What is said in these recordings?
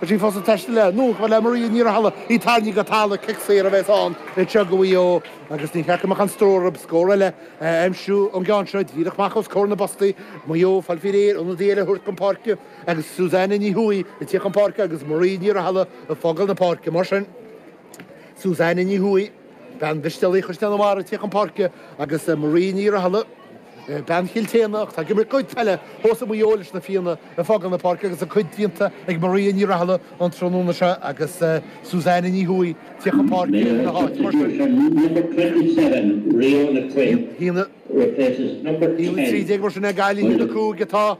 Tá sí fós ag taisteal le anonn chomh fada le Maria Ní Rathaille, í tarraingthe go talamh agus cic saor a bheas ann anseo go Mhaigh Eo agus ní ceart go mbeadh aon stró uirthi scór eile a aimsiú ón gceann seo díreach amach os comhair na bpostaí. Maigh Eo ag fáil faoi réir ionadaí eile a thabhairt chun páirce agus Suzanne Ní Thuathaigh ag tíocht chun páirce agus Maria Ní Rathaille ag fágáil na páirce. Mar sin, Suzanne Ní Thuathaigh, bean Mhistéalaigh Chaisleán an Bharraigh ag tíocht chun páirce agus Maria Ní Rathaille. Bean Chill tSéadhna, atá ag imirt a cuid peile fós i Maigh Eo leis na Fianna ag fágáil na páirce agus a cuid déanta ag Maria Ní Rathaille an tráthnóna seo agus Suzanne Ní Thuathaigh ag tíocht chun páirce ina háit. Mar sin, 1, 13 mar sin ag Gaillimh 1, 5 atá.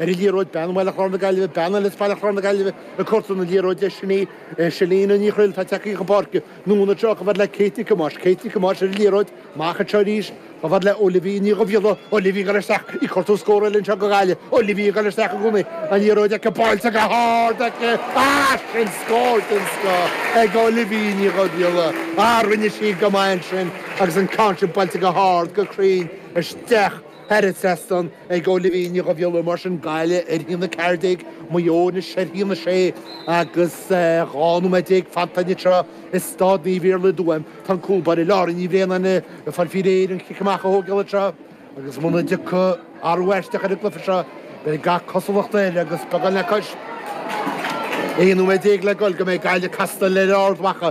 Ar an liathróid, Bean Bhaile Chláir na Gaillimhe, bean eile Bhaile Chláir na Gaillimhe ag cuartú na liathróide sin í Chellene Ní Thrill, atá ag tíocht chun páirce. Anonn anseo chomh fada le Kate Nic Thomáis, Kate Nic Thomáis ar an liathróid, amach anseo arís, chomh fada le Olivia Ní Dhuibhghiolla, Olivia ag dul isteach, ag cuartú scór eile anseo go Gaillimh, Olivia ag dul isteach i gcónaí, an liathróid aici, buailte go hard aici, ah sin scór den scoth ag Olivia Ní Dhuibhghiolla, ah rinne sí go maith ansin agus an ceann sin buailte go hard, go cruinn isteach. Thar an trasnán ag Olivia Ní Dhuibhghiolla mar sin Gaillimh ar 1, 14 Maigh Eo anois ar 1, 6 agus 12 nóiméad fanta anseo i Staid Naomh Iarlaith i dTuaim tá an cúl báire Laura Ní Bhraonáin ag fáil faoi réir an cic amach a thógáil anseo agus muna dtiocfaidh athrú aisteach ar an gcluiche seo beidh gach cosúlacht air agus beagán le cois 11 nóiméad le dhul go mbeidh Gaillimh ag castáil le Ard Mhacha.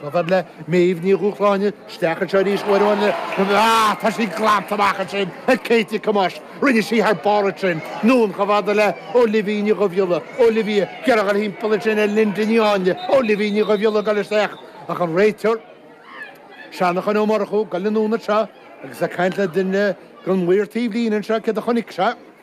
Chomh fada le Méabh Ní Dhúshláine isteach anseo arís uair amháin eile. Ah, tá sí glanta amach ansin ag Kate Nic Thomáis. Rinne sí thar barr ansin. Anonn chomh fada le Olivia Ní Dhuibhghiolla. Olivia ag iarraidh a dhul timpeall ansin ar Lynda Ní Áinle. Olivia Ní Dhuibhghiolla ag dul isteach. Ach an réiteoir, Jonathan Ó Murchú, ag dul anonn anseo agus ag caint le duine den mhaor taobhlíne anseo. Céard a chonaic sé?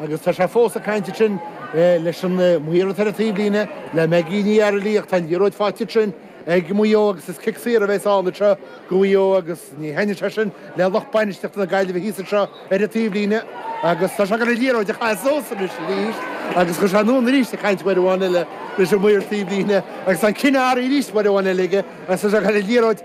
Agus tá sé fós ag caint ansin leis an maor ar an taobhlíne, le Maggie Ní Fhaircheallaigh, ach tá an liathróid faighte ansin ag Maigh Eo agus is cic saor a bheas ann anseo go Mhaigh Eo agus ní thaitneoidh sé sin le lucht bainistiochta na Gaillimhe thíos anseo ar an taobhlíne agus tá sé ag iarraidh an liathróid a chaitheamh suas anois arís agus chuaigh sé anonn arís ag caint uair amháin eile leis an maor taobhlíne agus tá an cinneadh athraithe arís uair amháin eile aige agus tá sé ag caitheamh an liathróid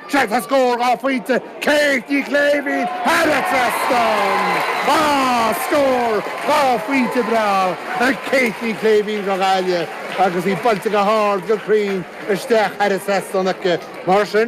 Sea, tá scór dhá phointe, Kate Ní Shléibhín thar an trasnán. Á, scór dhá phointe breá ag Kate Ní Shléibhín don Ghaillimh agus í buailte go hard, go cruinn isteach thar an trasnán aici. Mar sin.